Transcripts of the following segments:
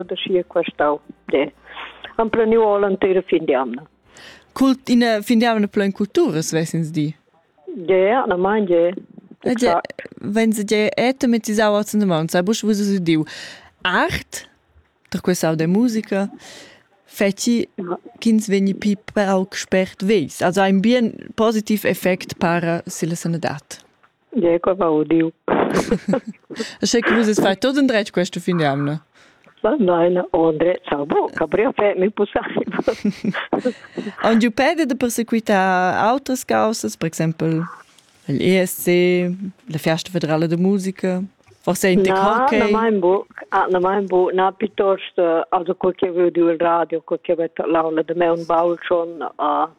da schi questau. Ne. Am planiu all entera fin di amna. Cult ina fin di amna plan culturas vesins di? Je, na mein je. Wenn se je automatizau als Mond, sai busch vus usu diu art, tra questau de musica, feci ch'ins vegni pi pauc spert veis. Also ein bien positiv effect para silla sanadad. Ecco va udiu. Sche che vus fai tot endretg questo fin d'amna? Nein, André Sabo, Gabriel fait mieux pour ça. On du pede de persequitar autres causas, per exemple l'ESC, la Festa Federale de Musica? Forse in te hockey? Na, na mein buc, ah, na mein buc, na piuttosto, also quel che veo di il radio, quel che veta l'aula de me un baul schon, uh,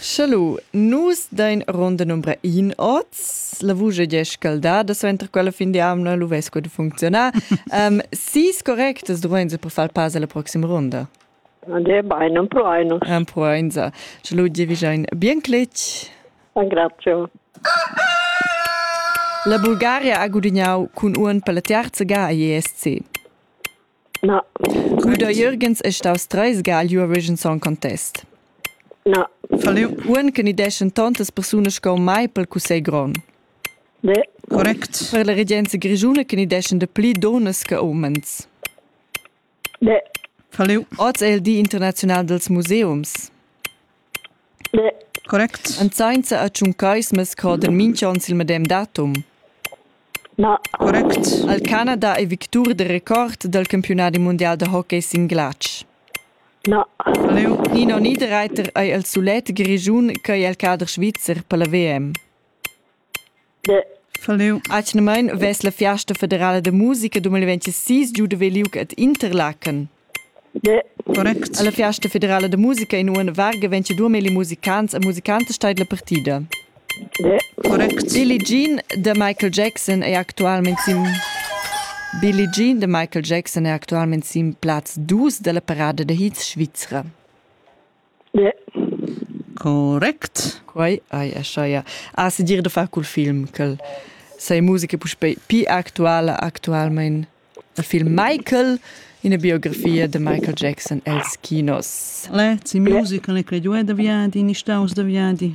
Schelu, nus dain ronda numbra in oz. La vusch è gia scaldada, suenter quella fin di amna lu vess quei funcziunar. um, sis correctas duainsa per far pass alla proxima ronda. De bain, un po einu. Un po einsa. Schelu, dir vi ein bien cletg. Grazie. La Bulgaria ha gudignau cun uon per la terza ga a ISC. Na. Guder Jürgens è staus treis ga agl Eurovision Song Contest. Na. Falliu uonn che ni deschen tontas persunas sco mai pel cussegl grond. Ne. Correct. Per la regenza grischuna che ni deschen de pli donas che umens. Ne. Falliu. Oz è il Di internazional dels museums. Correct. En sainza a tschuncais mess coder minch'on sil medem datum. Na. Correct. Al Canada è victur de record dal campionadi mundial da hockey sin glatsch. Na. Leu Nino Niederreiter ei el sulet grischun ch'ei el cader svizzer per la VM. Atgnamain vess la fiasta federala da musica 2026 giu da ver liug ad Interlaken. Correct. Alla fiasta federala da musica in uonn varga 22 milli musicants e musicantas steid la partida. Correct. Billie Jean da Michael Jackson è actualmente sin Billie Jean de Michael Jackson è actualmente sin Platz 2 della parada de hits Svizzera. Correct. Quai hai aschaia. A se dir da far cul film, ch'el sei musica puspei pi actuala actualmein. Il film Michael, ina biografia de Michael Jackson els kinos. Le, si musica, le creduai da viadi, ni staus da viadi?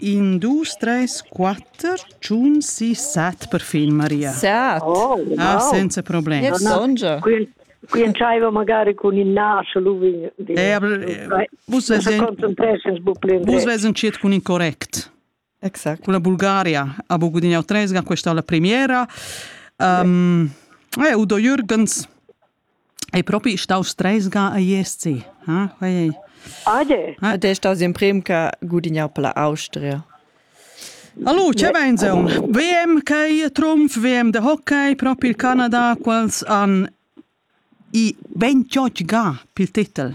In dus treis quatter tschun sis set perfin Maria. Sat. Oh, wow. Ah, senza problem. Io songia. Coinciva magari con il naso lui. Eh, aber vus vesen ciet con incorrect. Exact. Con la Bulgaria abbiamo guadagnato 3 questa la premiera. Um, eh, Udo Jürgens Ei propi stau stresga a ISC? Eh? Oi, oi. Ade. Ed è staus emprem che gudignau per la Austria. Hallo, ce vein seun? VM che trumf, VM de hockey, proprio il Canada, quals han i 28 ga pil titel.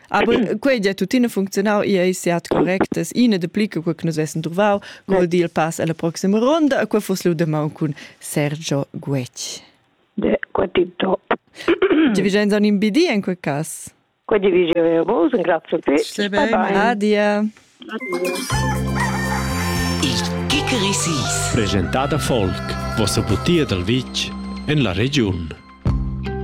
Aber quei ja tuttina funzionau e ei siat correctas ina de pli che nus essen truvau col dil pass alla proxima ronda qua fos lu demau cun Sergio Guetg. De qua tip top. Ti vigein son in bidi in quei cas. Qua ti vigein vos, grazie te. Adia. Il Kikerisis. Presentata Volk, vossa butia dal vitg en la regiun.